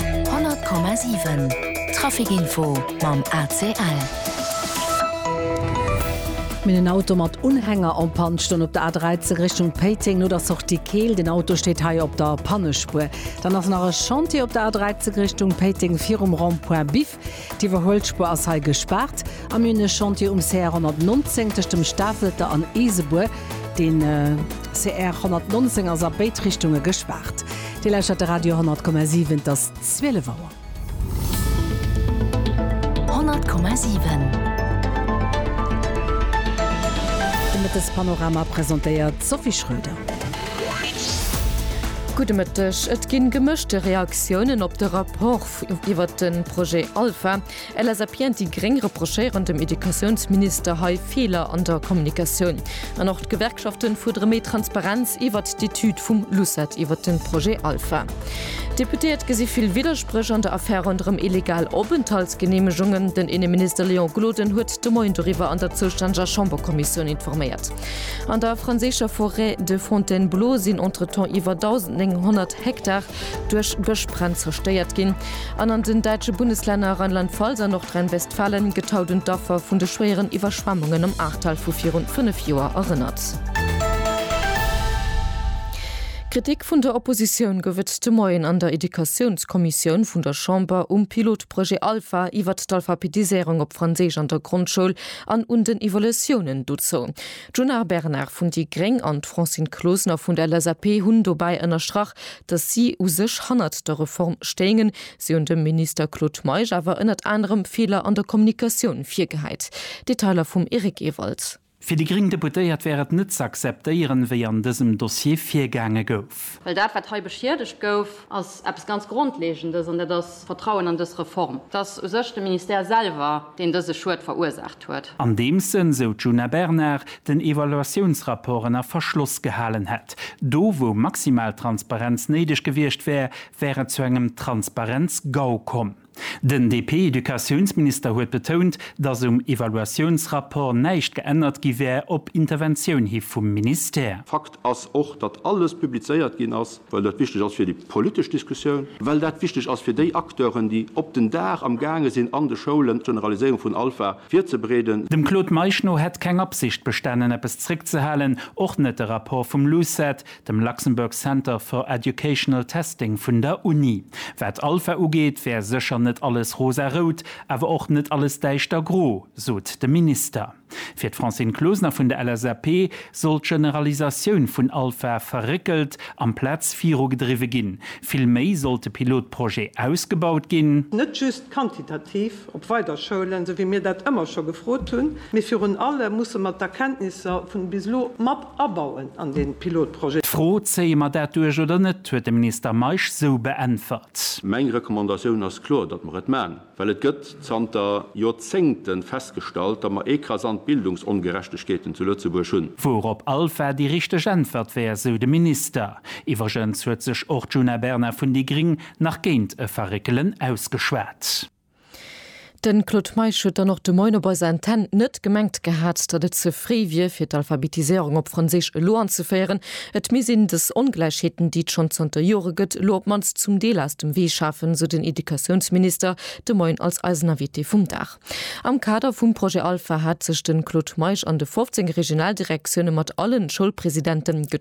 100,7 Trafic Info mam ACL. Minn en Auto mat Unhänger en Panne stoung op der A13 Richtung Péiteng no der Sortie Keel. Den Auto steet hei op der Pannespuer. Dann ass nach e Chantier op der A13 Richtung Péiteng virum Rond-point Biff. D'Iwwerhuelspur ass hei gespaart a mir hunn e Chantier um CR 119 tëscht dem Stafelter an Isebuer. De CR 119 ass a béid Richtunge gespaart. Dir lauschtert de Radio 10,7, et ass 12 Auer. 10,7 De Mëttespanorama presentéiert d'Sophie Schröder. Gudde Mëtteg. Et ginn gemëschte Reaktiounen op de Rapport. iwwert de Projet Alpha. LSAP an déi Gréng reprochéieren dem Educatiounsminister hei Feeler an der Kommunikatioun. An och d'Gewerkschaften fuerdere méi Transparenz iwwert d'Etüd vum LUCET iwwert de Projet Alpha. D'Deputéiert gesi vill Widderspréch an der Affär ronderëm illegal Openthaltsgeneemegungen. Den Inneminister Léon Gloden huet de Moien doriwwer an der zoustänneger Chamberkommissioun informéiert. An der franséischer Forêt de Fontainebleau sinn entretemps iwwer 1.900 Hektar duerch Gëschbränn zerstéiert ginn an an den däitsche Bundeslänner Rheinland-Pfalz a Nordrhein-Westfalen gëtt haut un d'Affer vun de schwéieren Iwwerschwemmungen am Ahrtal vu virun 5 Joer erënnert. Kritik vun der Oppositioun gouf et de Moien an der Educatiounskommissioun vun der Chamber um Pilotprojet Alpha iwwert d'Alphabetiséierung op Franséisch an der Grondschoul an un den Evolutiounen dozou. D'Djuna Bernard vun déi gréng an d'Francine Closener vun der LSAP hunn dobäi ënnerstrach, datt si u sech hannert der Reform stéingen. Si hunn dem Minister Claude Meisch awer ënnert anerem Feeler an der Kommunikatioun virgehäit. Detailer vum Eric Ewald. Fir déi gréng Deputéiert wär et net z'akzeptéieren, wéi an dësem Dossier virgaange gouf. Well dat, wat hei beschiedegt gouf, ass eppes ganz Grondlegendes, an dat ass d'Vertrauen an dës Reform. Et ass u sech de Ministère selwer, deen dëse Schued verursaacht huet. huet. Andeems en, sou d'Djuna Bernard, den Evaluatiounsrapport ënner Verschloss gehalen hätt. Do wou maximal Transparenz néideg gewiescht wär, wär et zu engem Transparenz-Gau komm. Den DP-Educatiounsminister huet betount, datt um Evaluatiounsrapport näischt geännert gi wär op Interventioun hi vum Ministère. Fakt ass och, datt alles publizéiert ginn ass, Well dat wichteg ass fir déi politesch Diskussioun. Well dat wichteg ass fir déi Acteuren, déi op den Dag am gaange sinn an de Schoulen d'Generaliséierung vun Alpha virzebreeden. Dem Claude Meisch no hätt keng Absicht bestanen, eppes zréckzehalen, och net de Rapport vum LUCET, dem Luxembourg Center for Educational Testing vun der Uni. Wat Alpha ugeet, wär sécher net alles rosarout, awer och net alles däischtergro, sot de Minister. Fir d'Francine Closener vun der LSAP soll d'Generalisatioun vun Alpha verréckelt amplaz virugedriwwe ginn. Vill méi sollt de Pilotprojet ausgebaut ginn. Net just quantitativ op weider Schoulen, sou wéi mir dat ëmmer scho gefrot hunn, mee virun allem musse mer d'Erkenntnisser vun bis elo mat abauen an dee Pilotprojet. D'Fro, zéie mer dat duerch oder net, huet de Minister Meisch sou beäntwert. Meng Recommandatioun ass kloer, datt mer et man. Well et gëtt zanter Joerzéngten festgestallt, datt mer ekrasant Bildungsongerechtegkeeten zu Lëtzebuerg hunn. Wourop Alpha déi richteg Äntwert wär, sou de Minister. Iwwregens huet sech och d'Djuna Bernard vun déi Gring nach géint e Verréckelen ausgeschwat. De Claude Meisch huet dann och de Moien op eiser Antenn net gemengt gehat, datt et ze fréi wier, fir d'Alphabetiséierung op Franséisch elo anzeféieren. Et misst een dës Ongläichheeten, déi et schonn zanter Jore gëtt, elo op d'mannst zum Deel aus dem Wee schafen, esou den Educatiounsminister de Moien als eisen Invité vum Dag. Am Kader vum Projet Alpha hat sech de Claude Meisch an de 15 Regionaldirektioune mat allen Schoulpresidenten getraff.